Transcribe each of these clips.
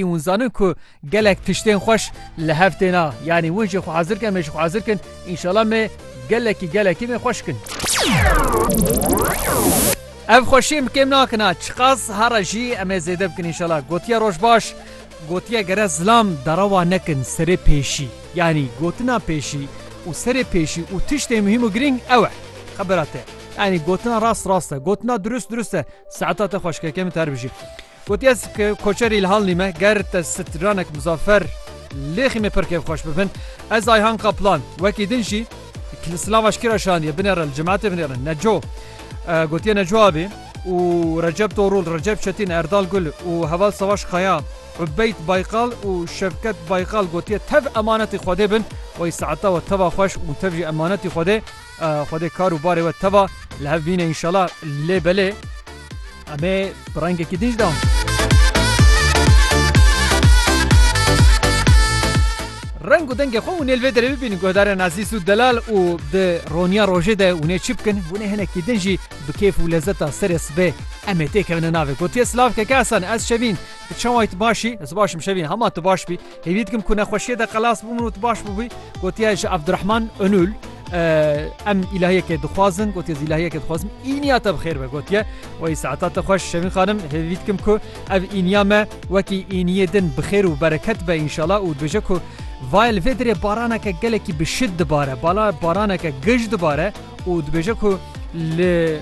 Hûn zanin ku gelek tiştên xweş li hev têna. Yanî hûn jê xwe hezir kin em ê jî xwe hezir kin. Înşala me gelekî gelekî me xweş kin. Ev xweşiyê min kêm nakina. Çiqas here jî em ê zêde bikin înşala. Gotiye roj baş. Gotiye gere zilam derewa nekin serê pêşî. Yanî gotina pêşî û serê pêşî û tiştê muhîm û girîng ew e. Xebera te. Yanî gotina rast rast e. Gotina dirust dirust e. Saeta te xweşkeke min te her bijî. Got ez koçerî li Halnî me, ger te stranek Muzaffer lêxî me pir kêfxweş bibin. Ez Ayhan Kaplan, wekî din jî li Silavaş kira şaniye binêre li cematê binêrin. Neco gotiye Neco abî û Recep Torûl, Recep Çetîn, Erdal Gul û heval Savaş Kaya, Ubeyd Baykal û Şevket Baykal gotiye tev emanetî Xwedê bin, wey saeta we teva xweş û tev jî emanetî Xwedê. Xwedê kar û barê we teva li hev bîne înşela lê belê em ê bi rengekî din jî dewam bikin. Reng û dengê xwe hûn ê li vê derê bibînin guhdarên Ezîz û Delal û di roniya rojê de hûn ê çi bikin? Hûn ê hinekî din jî bi kêf û lezeta serê sibê em ê têkevin navê. Gotiye silavkeke Esen ez Şevîn. Çawa yî tu baş î? Ez baş im Şevîn. Hema tu baş bî. Hêvî dikim ku nexweşiyê de xelas bû min û tu baş bûbî. Gotiye ji Abdurehman Onul em îlahiyekê dixwazin gotiye zî îlahiyekê dixwazim îniya te bi xêr be gotiye wayî saeta te xweş şevîn xanim hêvî dikim ku ev îniya me wekî îniyê din bi xêr û bereket be înşala û dibêje ku vayl vê dirê baraneke gelekî bi şid dibare bala baraneke gij dibare û dibêje ku li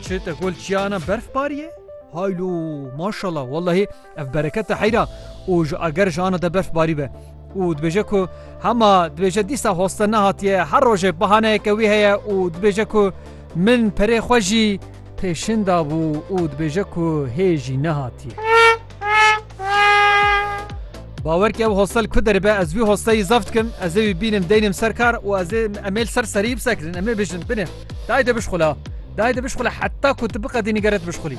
çi te gol çiyana berf bariye haylo maşallah wellahî Ev bereket e heyra û ji ager ji ana de berf barî be. û dibêje ku hema dibêje dîsa hoste nehatiye her rojê bahaneyeke wî heye û dibêje ku min perê xwe jî pêşin dabû û dibêje ku hê jî nehatiye. Bawer ke ew hostel ku deribe ez wî hosteyî zaf dikim, ez ê wî bînim deynim ser kar û ez ê em ê li ser serî bisekirin, em ê bijin binê. Dayê de bişxula. Dayê de bişxula heta ku tu biqedînî gere tu bişxulî.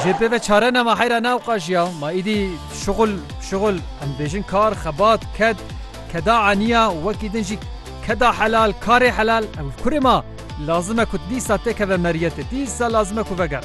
Jê pê ve çare nema heyra ne ew qaj ya. Ma îdî şixul şixul em dibêjin kar, xebat, ked, keda eniya wekî din jî keda helal, karê helal. Ew kurê ma lazim e ku dîsa têkeve meriyetê. Dîsa lazim e ku vegere.